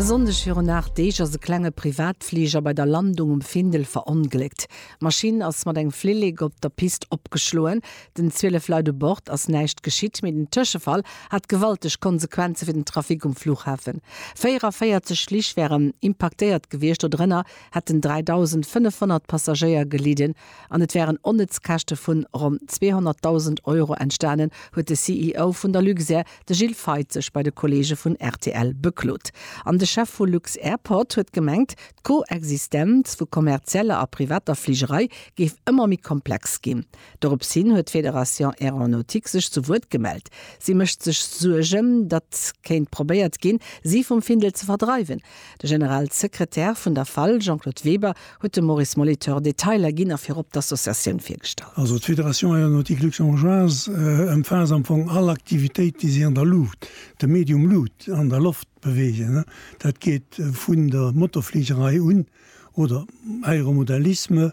E Sonndeg virun 8 Deeg ass e klenge Privatfliger bei der Landung um Findel verongléckt. D'Maschinn ass mat engem Flillek op der Pist opgeschloen. Den 12 Leit u Bord ass näischt geschitt, mee den Tëschefall hat gewalteg Konsequenze fir den Trafic um Flughafen. 44 Flich wären impaktéiert gewiescht, dodrënner hätten 3.500 Passagéier gelidden an et wären onnëtz Käschte vun ronn 200.000 Euro entstanen, huet de CEO vun der Luxair De Gilles Feith sech bei de Kolleege vun rtl beklot. An de Chef vu Lux-Airport huet gemengt, d'Koexistenz vu kommerzieller a privater Fligerei géif ëmmer méi komplex ginn. Dorops hin huet d'Fédération Aéronautique sech zu Wuert gemellt. Si mécht sech Suergen, datt kéint probéiert ginn, si vum Findel ze verdreiwen, De Generalsekretär vun der fal, Jean-Claude Weber, huet dem Maurice Molitor Detailer ginn a virop d'Associatioun virgestallt. Also d'Fédération Aéronautique Luxembourgeoise ëmfaasst am Fong all Aktivitéit, déi sech an der Luucht, dem Medium Luut, an der Loft beweegen. Dat geet vun der Motorfligerei un, oder Aéromodellisme,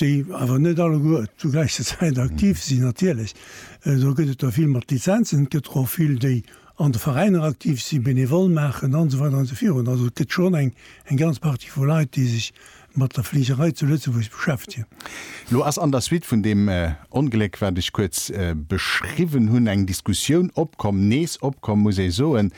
déi awer net alleguer zur gläicher Zäit aktiv sinn, natierlech, do gëtt et der vill mat Lizenzen, et gëtt der och vill, déi an de Veräiner aktiv sinn, bénévol maachen an esou weider an esou virun. Also et gëtt schonn eng eng ganz Partie vu Leit, déi sech mat der Fligerei zu Lëtzebuerg beschäftegen. Elo ass an der Suite vun deem Ongléck, wat ech kuerz beschriwwen hunn, eng Diskussioun opkomm, nees opkomm, muss ee soen,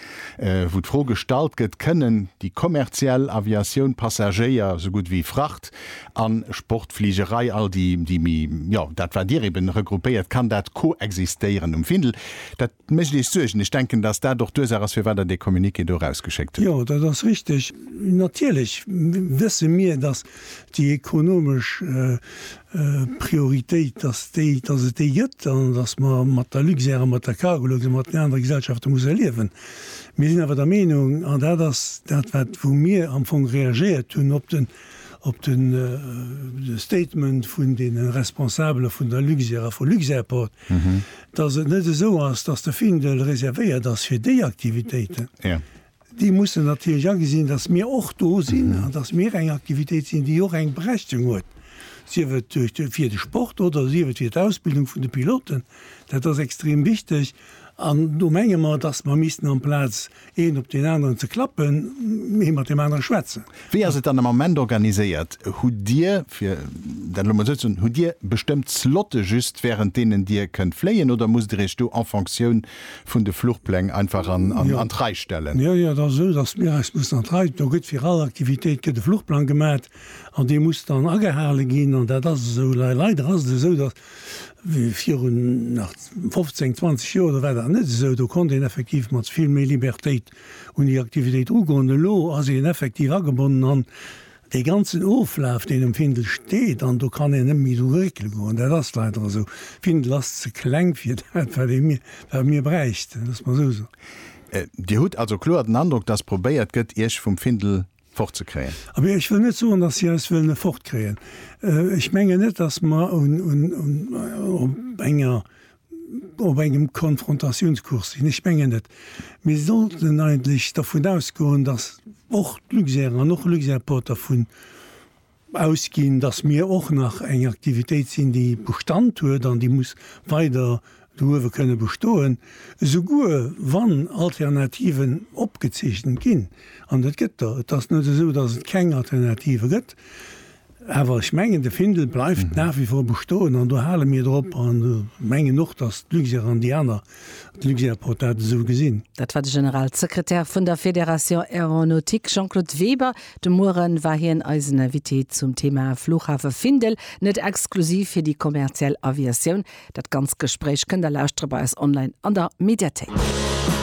wou d'Fro gestallt gëtt, Kënnen déi kommerziell Aviatioun Passagéier esou gutt wéi Fracht An Sportfligerei, all déi, déi méi, jo, dat wat Dir eben regroupéiert, kann dat koexistéieren um Findel? Dat mécht Iech Suergen? Ech denken, dass dat och d'Ursaach ass, firwat Der dee Communiqué do erausgeschéckt hutt. Jo, dat ass richteg. Natierlech wësse mir, dass déi ekonomesch Prioritéit, dass déi, dass et déi gëtt an dass mer mat der Luxair a mat der Cargolux a mat den anere Gesellschafte musse liewen. Mir sinn awer der Meenung, an dat ass dat wat wou mir am Fong reagiert hunn op den, op de Statement vun de Responsabele vun der Luxair a vu Luxairport, dass et net esou ass, dass de Findel reservéiert ass fir déi Aktivitéiten. Déi mussen natierlech agesinn, dass mir och do sinn an dass mir eng Aktivitéit sinn, déi och eng Berechtigung huet, sief et fir de Sport oder sief et fir d'Ausbildung vun de Piloten. Dat ass extrem wichteg an do menge mer, dass mer missten amplaz Een op deen aneren ze klappen, ee mat deem anere schwätzen. Wéi ass et dann am Ament organiséiert? Hutt Dir, fir dat elo mol esou ze soen, hutt Dir bestëmmt Slotte just wärend deenen Dir kënnt fléien oder musst Dir Iech do en Fonctioun vun de Fluchpläng einfach an d'Rei stellen? Jo, jo, et ass esou, datt mir eis mussen an d'Rei, do gëtt fir all Aktivitéit gëtt e Fluchplang gemat an dee muss dann agehale ginn an dat ass esou. Leider ass et esou, datt Viru nach 15, 20 Joer, do war dat net esou. Do konnt een effektiv mat vill méi Libertéit un déi Aktivitéit ugoen. Elo ass een effektiv agebonnen an dee ganzen Oflaf, deen um Findel steet. An do kann een net méi dru réckele goen. Dat ass leider esou. Findel ass ze kleng fir dat, wat ee mir, wat mir bräichten, loosse mer esou soen. Dir hutt also kloer den Androck, dass probéiert gëtt, Iech vum Findel fort ze kréien. Abee, ech wëll net soen, datt si eis wëllen fort kréien. Ech mengen net, datt mer op engem Konfrontatiounscours sinn. Ech mengen net. Mir sollten eigentlech dervun ausgoen, datt och d'Luxair an och Luxairport dervun ausginn, dass mir och nach eng Aktivitéit sinn, déi Bestand huet an déi muss weider douewe kënne bestoen, esouguer wann Alternativen opgezeechent ginn, an et gëtt der. Et ass net esou, dass et keng Alternative gëtt, awer ech mengen, de Findel bleift nach wie vor bestoen an do hale mir drop an mengen och, dass d'Luxair an déi aner Hat Luxairport dat esou gesinn? Dat war de Generalsekretär vun der Fédération Aéronautique, Jean-Claude Weber. De Muere war hien eisen Invité zum Thema Flughafe Findel, net exklusiv fir déi kommerziell Aviatioun. Dat ganzt Gespréich kënnt der lauschtere bei eis online an der Mediathéik.